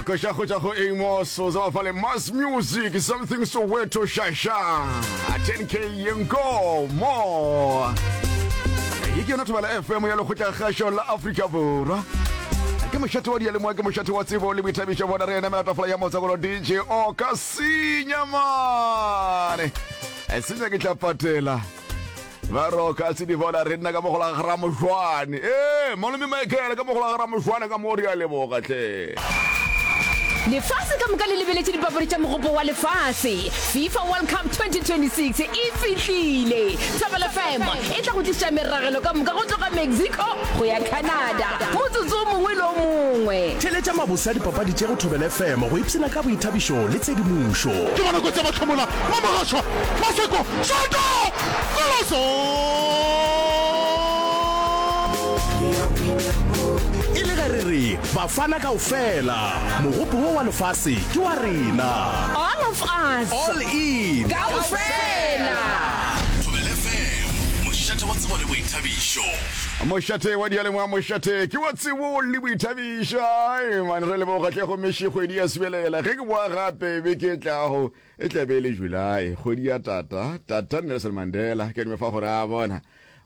Kosha go tšwa go Amos o tseba fale mass music something soweto shasha 10k yenko more e ke yona thobela fm ya lekgotla kgašo la afrika borwa ke mošate wa dialemoa ke mošate wa tsebo le boithabišo bona re ena melatafola ya motsakolo dj o ka senya mane senya ke tla patela ba roka se di bona re nna ka mogola ga ramošwane ee malome michael ka mogola ga ramošwane ka mo re a leboga tle lefase ka moka le lebeletše dipapadi tša mogopo wa lefase fifa world cup 2026 e fihlile thobela fm e tla go tliša meragelo ka moka go tloga mexico go ya canada motsotso o mongwe le o mongwe theletša mabose a dipapadi tše go thobela fm go ipshina ka boithabišo le tshedimošo ke bona kotsi ya mahlomola ba mogašwa maseko šato Phološo e le ge re re bafana kaofela mogopo wo wa lefase ke wa rena all of us all in kaofela mošate wa tsebo le boithabišo mošate wa dialengwa mošate ke wa tsebo le boithabišo mane re leboga tlego mešekgwedi ya sebelela ge ke boa gape be ke tlago E tla be e le July, kgwedi ya tata. Tata Nelson Mandela, ke nwe fa gore a bona.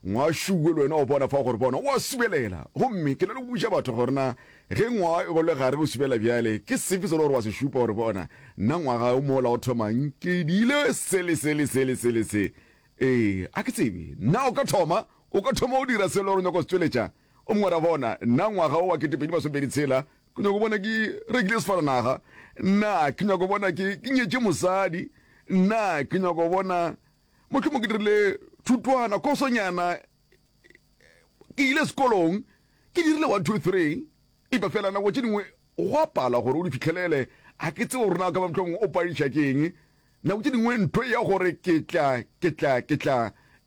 Ngwašuwe le wena o bona fa gore bona, o a subelela. Gomme ke na le go buša batho gore na ge ngwa go le gare o subelela bjale, ke sefe se le gore wa se šupa gore bona, nna ngwaga o mola o thomang ke dile se le se le se le se le se. Ee, a ke tsebe. Na o ka thoma, o ka thoma o dira se le gore o nyaka go se tšweletša? O mongwe ra bona, nna ngwaga o wa kete pedi masomepedi tshela, Ke nyako bona ke rekile sefaranaga, nna ke nyako bona ke ke nyetše mosadi, nna ke nyako bona mohlomong ke dirile thutwana kosonyana ke ile sekolong ke dirile one two three epa fela nako tše dingwe go a pala gore o di fitlhelele a ke tsebo rona ka ba motlhong o padiša ke eng nako tše dingwe ntho ya gore ke tla ke tla ke tla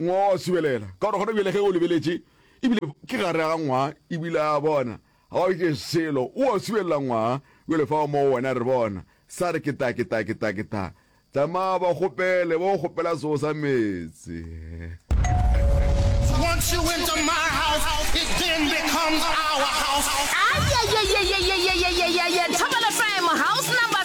Ngwaa wa subelela, ka gore gona bjale ge o lebeletše, e bile ke gare ga ngwaa, e bile a bona, ga o ke selo, o a subelela ngwaa, bjale fao moo wena re bona, sa re ke ta, ke ta, ke ta, ke ta. Tsamaya ba kgopele, ba go kgopela seo sa meetse.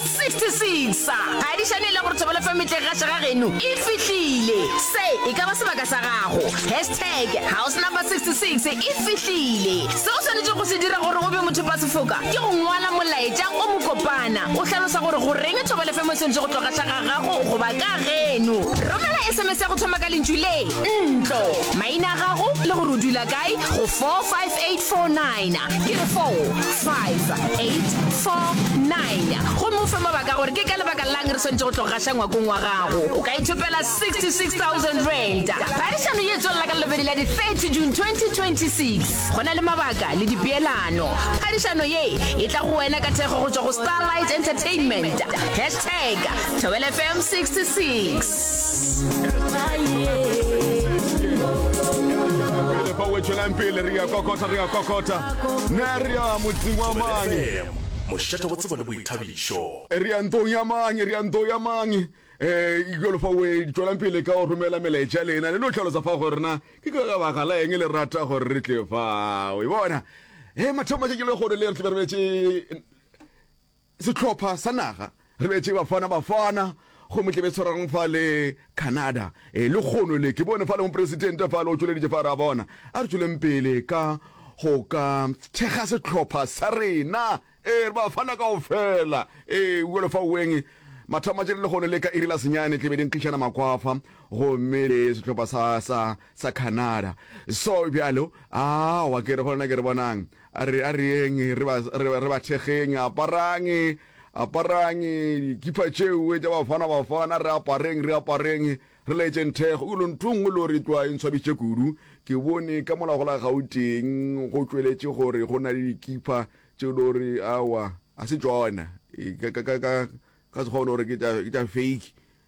66 ga di šane e le gore thobelo fa metleng ga šega geno e fihlile se e ka ba sebaka sa gago hashtag house number 66 e fihlile se o swanetše go se dira gore o be mothopasefoka ke go ngwala molaetša o mokopana o hlalosa gore goreng thobelo fa mo e swanetše go tloga šega gago goba ka geno romela sms ya go thoma ka lentšu le ntlo maina a gago le gore o dula kae go 45849 ke re 45849 Messiah. Gomme o fe mabaka a gore ke ka lebaka la'ng re swanetše go tlo gaša ngwakong wa gago. O ka ithopela R66,000. Phadišano ye e tswelela ka Labobedi la di 30 June 2026. Go na le mabaka le dipeelano. Phadišano ye e tla go wena ka thekgo go tšwa go Starlight Entertainment. Hashtag Thobela FM 66. Pele re ya kokota, re ya kokota. Ne re ya motseng wa mane. Mošate wa tsebo le boithabišo. Re ya ntong ya mang? Re ya ntong ya mang? Ee, bjalo fa we, tšwelang pele ka go romela melaetša ya lena, le no hlalosa fa gore na ke ka baka la eng le rata gore re tle fa. We bona? Ee, mathomo matšatši a lehono le re tlabe re bjetše sehlopha sa naga. Re bete Bafana Bafana gomme tle be tshwarang fa le Canada. E, lekgono le, ke bone fa le Mopresidente fa le o tšweleditše fa, ra bona. A re tšweleng pele ka go ka thekga sehlopha sa rena, e, re Bafana kaofela. E, bjalo fa weng, mathomo a tšere lekgono le ka iri la senyane tle be di nkgišana makwafa gomme le sehlopha sa, sa, sa Canada. So bjalo, aowa, ke re go lena, ke re bonang, a re, a re yeng re ba, re ba, re ba thekgeng, aparang. Aparang dikipa tšeo tša Bafana Bafana, re apareng, re apareng, re laetšeng thekgo. Go lo nthong go lo re tlwa e ntshwabitše kudu. Ke bone ka mola go la Gauteng go tšweletše gore go na le dikipa tšeo lo re aowa ga se tšona, ka Sekgowa lo re ke tša fake.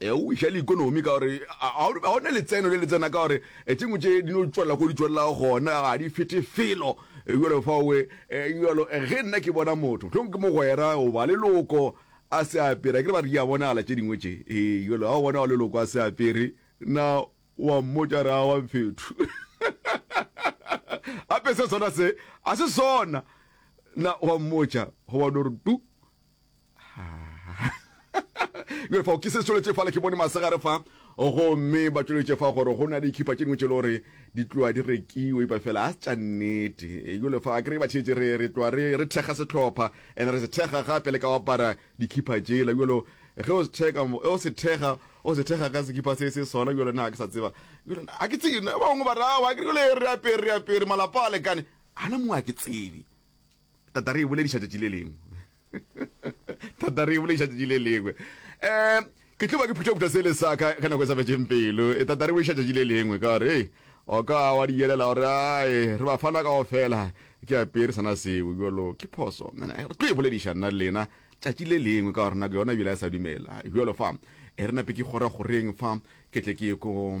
E o iša le ikonomi ka gore ga o ne letseno le le tsena ka gore tše ngwe tše di no tšwelela ko di tšwelelago gona ga di fete felo jalo faowe jalo ge nna ke bona motho tlhong ke mogwera goba leloko a se apere ke ba re di a bonala tše dingwe tše ee jalo ga o bona wa leloko a se apere na wa mmotša re a wa mfethu ape se sona se a se sona na wa mmotša goba no re tu le fa ke se tsholetse fa le ke bone masegare fa go mme ba tsholetse fa gore go na le khipa tšeno tšelo re di tloa di rekiwe ba fela a tša nnete yo le fa a kry ba tshetse re re tloa re re thega setlhopha and re se thega gape le ka wa para di khipa tšela yo lo ge o se thega o se thega o se thega ka se khipa se se sona yo le na ke sa tseba yo le a ke tsene ba ngwe ba ra wa ke le re apere re apere malapa a lekane ana mo a ke tsebe tata re e bolediša tšatši le lengwe tata re e bolediša tšatši le lengwe um ke tlo ba ke phuthaphutha sele sa ka ge nako e sa fetseng pelo e tata re bolediša tšatši le lengwe ka gore ee o ka wa di yelela gore ae re ba fana kao fela ke apere sana seo jalo ke phoso re tlo e bolediša nna le lena tšatši le lengwe ka gore nako yona ebile a sa dumela jalo fa e re nape ke kgora goreng fa ke tle ke ye ko